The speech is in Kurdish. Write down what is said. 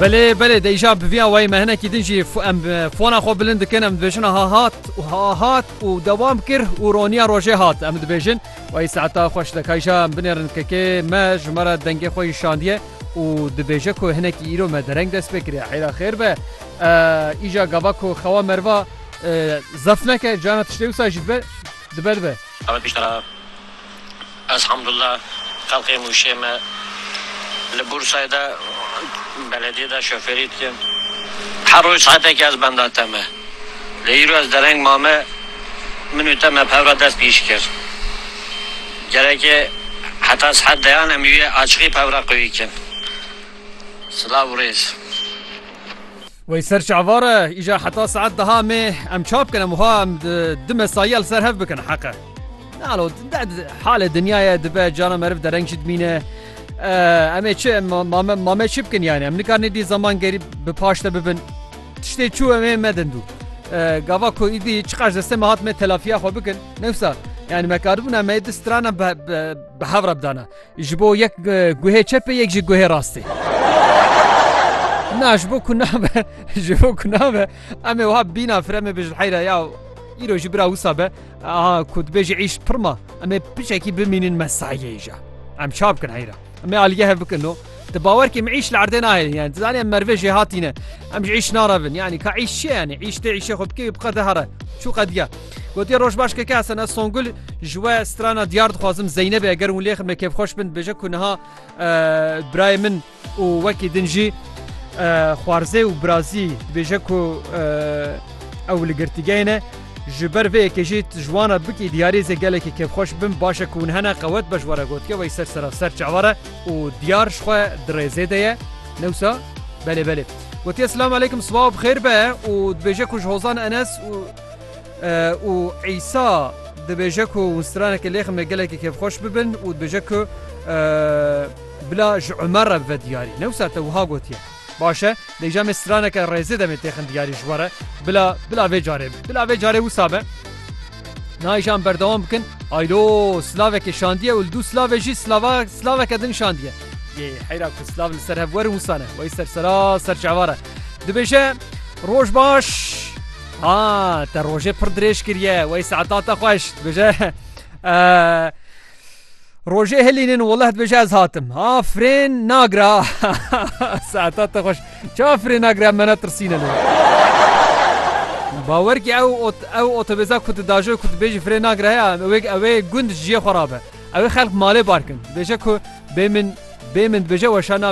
Belê belê deyja bi vîya wayê me hinekî din jî em fona xwe bilind dikin em dibêjin ha hat û ha hat û dewam kir û roniya rojê hat em dibêjin wayê saeta xweş dekayja em binêrin kekê me ji me re dengê xwe yî şandiye û dibêje ku hinekî îro me dereng dest pê kiriye heyra xêr be îja gava ku xewa merva zef neke cana tiştê wisa jî dibe dibe dibe. Ez Hamdullah xelkê Mûşê me li Bûrsayê de belediyê de şofêrî dikim. Her roj saetekê ez benda te me. Lê îro ez dereng mame min û te me bi hev re dest bi îş kir. Gereke heta saet deyan em yê açiqî bi hev re qewî bikin. Silav û rêz. Wey ser çi ava re? Îja heta saet deha mê em ça bikin? Em wiha em di mesayîya li ser hev bikin heq e. Nalo halê dinyaya dibe cana meriv dereng jî dimîne. Em ê çi mame çi bikin yani em nikarinê dî zaman gerî bi paş te bibin. Tiştê çû em ê medin dû. Gava ku îdî çiqas destê me hat me telafiya xwe bikin. Newsa yani me karibûna me di strana bi hev re bidana. Ji bo yek guhê çepê yek jî guhê rastê. Na ji bo ku nabe ji bo ku nabe em ê wiha bîna firemê bijil heyra ya îro jî bira wisa be Aha ku dibêjî îş pir ma em ê piçekî bimînin mesaiyê îja. Em çap kin heyra. Em ê alîgeh hev bikin no. Di bawer kê min îş li erdê nahêlin yani dizanî em merivê jê hatîne. Em ji îş narevin yani ka îş çi yani îş tê îşê xwe bikê wî biqe de here. Çû qediya. Gotiye roj baş keke Hesen ez Songul ji we strana diyar dixwazim Zeynebê eger hûn lê ximne kêfxweş bin dibêje ku niha birayê min Û wekî din jî xwarzê û birazî dibêje ku ew li girtîgehê ne. Ji ber vê yekê jî tu ji wan re bikî diyarî zê gelekî kêfxweş bin baş e ku hûn hene qewet be ji we re gotiye wey ser seraser çavar e û diyar ji xwe di rêzê de ye. Ne wisa? Belê belê. Gotiye silam eleykum sibawa bi xêr be û dibêje ku ji hozan Enes û û Îsa dibêje ku hûn straneke lêxim ne gelekî kêfxweş bibin û dibêje ku Bila ji Umer re bibe diyarî. Ne wisa te wiha gotiye. Baş e, dê îja me straneke rêzê demê têxin diyarî ji we re. Bila, bila vê carê be. Bila vê carê wisa be. Na îja em berdewam bikin. Aydo, silavekê şandiye û li dû silavê jî silava, silaveke din şandiye. Yê, heyra ku silav li ser hev werin wisa ne. Wey ser sera, ser çavar e. Dibêje, Roj baş! Ha, te rojê pir dirêj kiriye. Wey saeta te xweş. Dibêje, Eee. Rojê hilînin weleh dibêje ez hatim. Ha frên nagira saeta te xweş. Çawa frên nagira me ne tirsîne lê. Bawer ki ew ew otobêza ku tu dajo ku dibêjî frê nagira heye ewê ewê gund jiyê xwe rabe. Ewê xelk malê barkin. Dibêje ku bê min bê min dibêje weşa nabe.